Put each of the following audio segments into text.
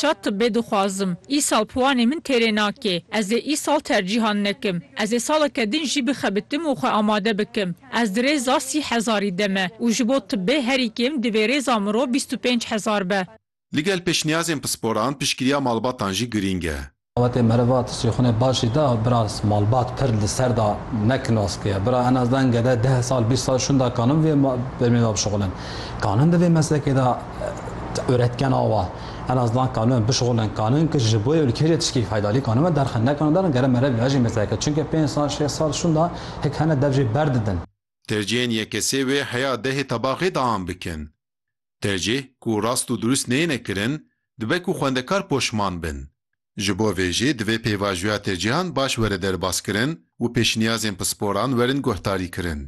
Şa tibbê dixwazim. Îsal piwanê min têrê nake. Ez ê îsal tercîhan nekim. Ez ê saleke din jî bixebitim û xwe amade bikim. Ez di rêza sî hezarî de me û ji bo tibbê herî kêm divê rêza mirov bîst û pênc hezar be. Ligel pêşniyazên pisporan, piştgiriya malbatan jî girîng e. Xebatê meriva tu sîxunê başî da bira malbat pir li ser da ne kinoskê ye. Bira en az den gede deh sal bîst sal şûn da kanin vê bermî da bişuxulin. Kanin di vê meslekê da öretken awa en az dan kanin bişuxulin. Kanin ki ji bo ülkeyê jî tişkî feydarî kanin ve derxin. Ne kanin darin gere merev vejî mesleke çunke pênc sal şêst sal şûn da hik hene dev jê berdidin. Terciyên yekesê wê heya dehê tebaxê da an bikin. Tercîh ku rast û durust neyêne kirin, dibe ku xwendekar poşman bin. Ji bo vê jî divê pêvajoya tercîhan baş were derbaskirin û pêşniyazên pisporan werin guhdarîkirin.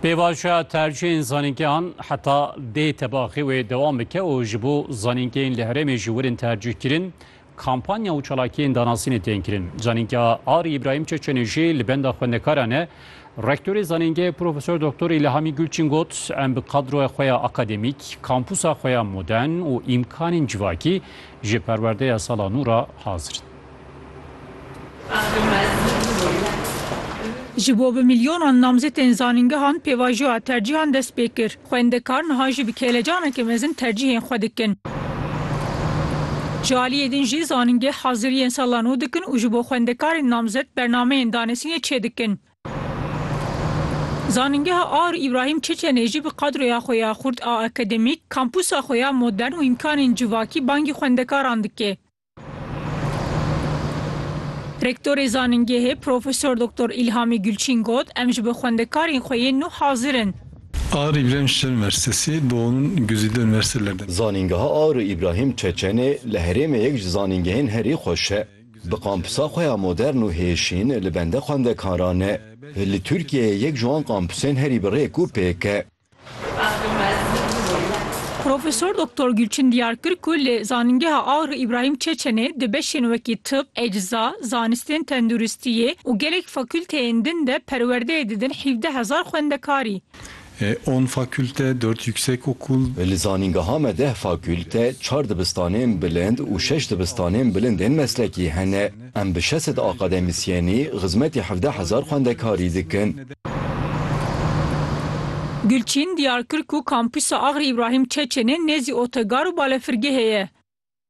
Pêvajoya tercîhên zanîngehan heta dê tebaxê wê dewam bike û ji bo zanîngehên li herêmê jî werin tercîhkirin Kampanya û çalakiyên danasînê tên kirin. Zanîngeha Arî Îbrahîm Çeçenê jî li benda xwendekaran e. Rektorê zanîngehê Profesor Doktor Îlhamî Gulçin got, Em bi kadroya xwe ya akademîk, kampûsa xwe ya modern û îmkanên civakî ji perwerdeya sala nû re hazir in. Ji bo bi milyonan namzetên zanîngehan pêvajoya tercîhan dest pê kir. Xwendekar niha jî bi kêlecaneke mezin tercîhên xwe dikin. Ji aliyê din jî zanîngeh haziriyên sala nû dikin û ji bo xwendekarên namzet bernameyên danasînê çêdikin. Zanîngeha Aur Îbrahîm Çeçenê jî bi qadroya xwe ya xurt a akademîk, kampûsa xwe ya modern û îmkanên civakî bangî xwendekaran dike. Rektorê zanîngehê Profesor Doktor Îlhamî Gulçîn got, Em ji bo xwendekarên xwe yên nû hazir in. Ağrı İbrahim Çeçen Üniversitesi bu onun güzide üniversitelerden. Zanîngeha Ağrı İbrahim Çeçenê li herêmê yek ji zanîngehên herî xweş e. Bi kampûsa xwe ya modern û hêşîn li bende xwendekaran e. Li Tirkiyeyê yek ji wan kampûsên herî bi rêk û pêk e. Profesor Doktor Gulçin diyar kir ku li Zanîngeha Agr Îbrahîm Çeçenê di beşên wekî tib, ecza, zanistên tenduristiyê û gelek fakûlteyên din de perwerdeyê didin hîvdeh hezar xwendekarî. On fakûlte, dört yüksekokul. Li zanîngeha me deh fakûlte, çar dibistanên bilind û şeş dibistanên bilindên meslekî hene. Em bi şeş sed akademîsyenî xizmetê hevdeh hezar xwendekarî dikin. Gulçîn diyar kir ku Kampûsa Agri Îbrahîm Çeçenê nêzî otegar û balefirgehê ye.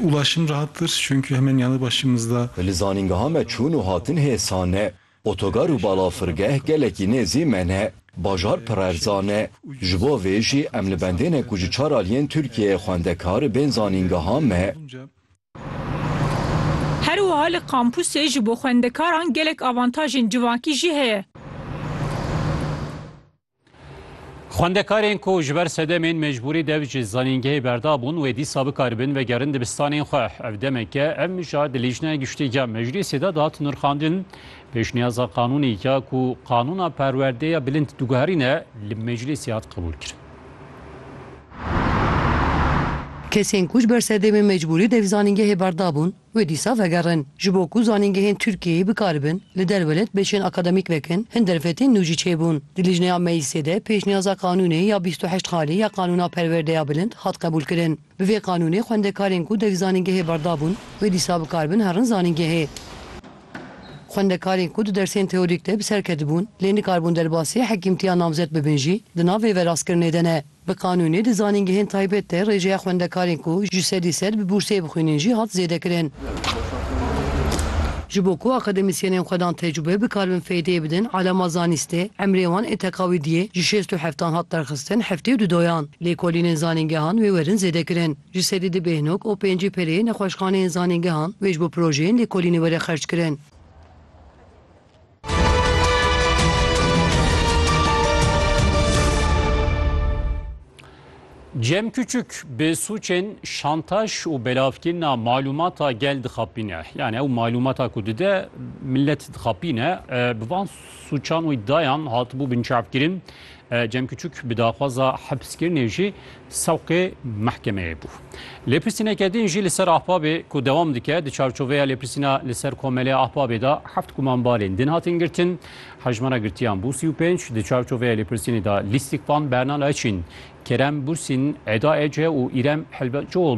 Ulaşım rahattır çünkü hemen yanı başımızda. Li zanîngeha me çûn û hatin hê asan e. Otogar û balafirgeh gelekî nêzî me ne. Bajar pirerzan e. Ji bo vê jî em li bendê ne ku ji çar aliyên Tirkiyeyê xwendekar bên zanîngeha me. Her wiha li kampusê ji bo xwendekaran gelek avantajên civakî jî heye. Xwendekarên ku ji ber sedemên mecbûrî dev ji zanîngehê berdabûn wê dîsa bikaribin vegerin dibistanên xwe. Ev demek e ev mijar di Lîjneya Giştî ya Meclîsê de dihat nirxandin. Pêşniyaza qanûnî ya ku qanûna perwerdeya bilind diguherîne li meclîsê hat qebûlkirin. Kesên ku ji ber sedemên mecbûrî di zanîngehê berda bûn wê dîsa vegerin. Ji bo ku zanîngehên Tirkiyeyê bikaribin li derwelê dibêşên akademîk vekin hin derfetên nû jî çêbûn. Di lijneya meclîsê de pêşniyaza qanûnê ya bîst û heşt xalî ya qanûna perwerdeya bilind hat qebûlkirin. Bi vê qanûnê xwendekarên ku dek zanîngehê berda bûn wê dîsa bi kar bin herin zanîngehê. Xwendekarên ku di dersên teorîk de bi ser ketibûn lê nikarbûn derbasî hekîmtiya namzet bibin jî di nav vê verastkirinê de ne. Bi qanûnê di zanîngehên taybet de rêjeya xwendekarên ku ji sedî sed bi bûrsê bixwînin jî hat zêdekirin. Ji bo ku akademisyenên xwedan tecrube bikarbin feydeyê bidin alama zanîstê, emrê wan ê teqawîdiyê ji şêst û heftan hat derxistin heftê û du doyan. Lêkolînên zanîngehan wê werin zêdekirin. Ji sedî du bêhnok û pêncî pereyê nexweşxaneyên zanîngehan wê ji bo projeyên lêkolînê were xerckirin. Cem Küçük bi suçên şantaj û belavkirina malûmata gel dixapîne. Yani ew malûmata ku dide millet dixapîne. Bi van suçan û îddiayan hatibû binçavkirin. Cem Küçük bi daxwaza hepskirinê jî sewqê mehkemeyê bû. Lêpirsîneke din jî li ser Ahbabê ku dewam dike, di çarçoveya lêpirsîna li ser Komelê Ahbabê de heft kumanbarên din hatin girtin. Hejmara girtiyan bû sî û pênc. Di çarçoveya lêpirsînê de Lîstikvan Berna Laçîn, Kerem Bursîn, Eda Ece û Îrem Helbetçioğlu